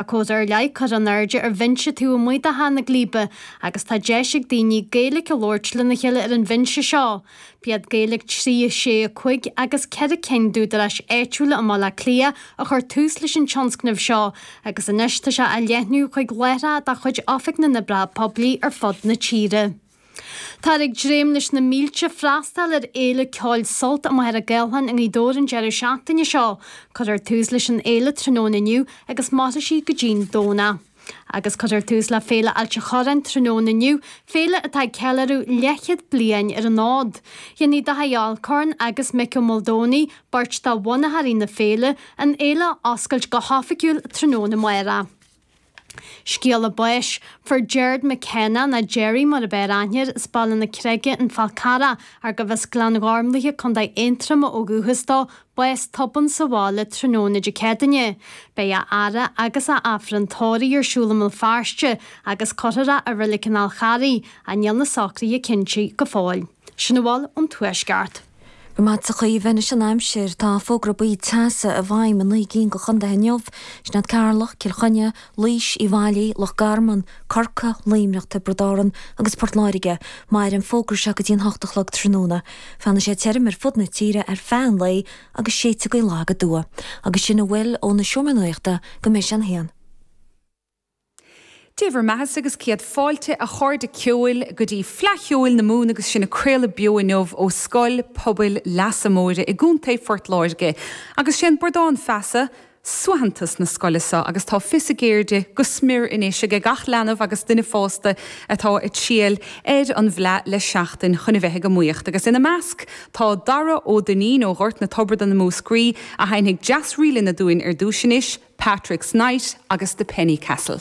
Tá cód ar leith curtha in airde ar bhinse taobh amuigh de Theach na Gléibe agus tá deis ag daoine Gaeilge a labhairt lena chéile ar an bhinse seo. B'iad Gaeilge 365 agus 4 cinn d'údaráis áitiúla i mBaile Átha Cliath a chuir tús leis an tionscnamh seo agus anois tá sé á leathnú chuig láithreacha de chuid Oifig na nOibreacha Poiblí ar fud na tíre. Táthar ag dréim leis na mílte freastal ar Fhéile Ceoil Sult i Machaire Gathlán i nGaoth Dobhair an deireadh seachtaine seo. Cuirfear tús leis an fhéile tráthnóna inniu agus mairfidh sí go dtí'n Domhnach. Agus cuirfear tús le Féile Ailt an Chorráin tráthnóna inniu, féile atá ag ceiliúradh leithchéad bliain ar an fhód. Dhéanfaidh Dáithí Alcorn agus Mick Ó Maoldomhnaigh, beirt de bhunaitheoirí na féile, an fhéile a oscailt go hoifigiúil tráthnóna. Máire. Scéala báis, Fuair Gerard McKenna, ná Gerry mar ab fhearr aithne air, as Baile na Creige An Fál Carrach, ach gurbh as Gleann Ghormlaithe, Co Aontroma ó dhúchas dó, bás tobann sa bhaile tráthnóna Dé Céadaine. Beidh a fhaire agus a Aifreann tórraidh ar siúl i mBéal Feirste agus cuirfear é i Reilig an Fháil Charraigh, ach níl na socruithe cinnte go fóill. Sin a bhfuil ón Tuaisceart. Go raibh maith agatsa, a Chaoimhe. Anois an aimsir, tá fógra buí teasa i bhfeidhm i naoi gcinn de chontaetha inniu, sin iad Ceatharlach, Cill Chainnigh, Laois, Uíbh Fhailí, Loch Garman, Corcaigh, Luimneach, Tiobraid Árann agus Port Láirge. Mairfidh an fógra seo go dtí an hocht a chlog tráthnóna. Fanfaidh sé tirim ar fud na tíre ar feadh an lae agus séidfidh gaoth lag aduaidh. Agus sin a bhfuil ó na Seomraí Nuachta go mbeidh sé an haon. Dé bhur mbeathasa agus céad fáilte a chairde ceoil go dtí Fleadh Cheoil na Mumhan agus sinn ag craoladh beo inniu ó Scoil Pobail Leasa Móire i gContae Phort Láirge agus sé an Bradán Feasa suaitheantas na scoile seo agus tá fios a gceirde go smior anois ag gach leanbh agus duine fásta atá ag triall ar an bhFleadh le seachtain chun a bheith ag iomaíocht agus ina measc Tá Dara Ó Duinnín, ó Ghort na Tiobratan i Múscraí, a sheinnfidh dreas ríleanna dúinn ar dtúis anois, Patrick's Night agus The Penny Castle.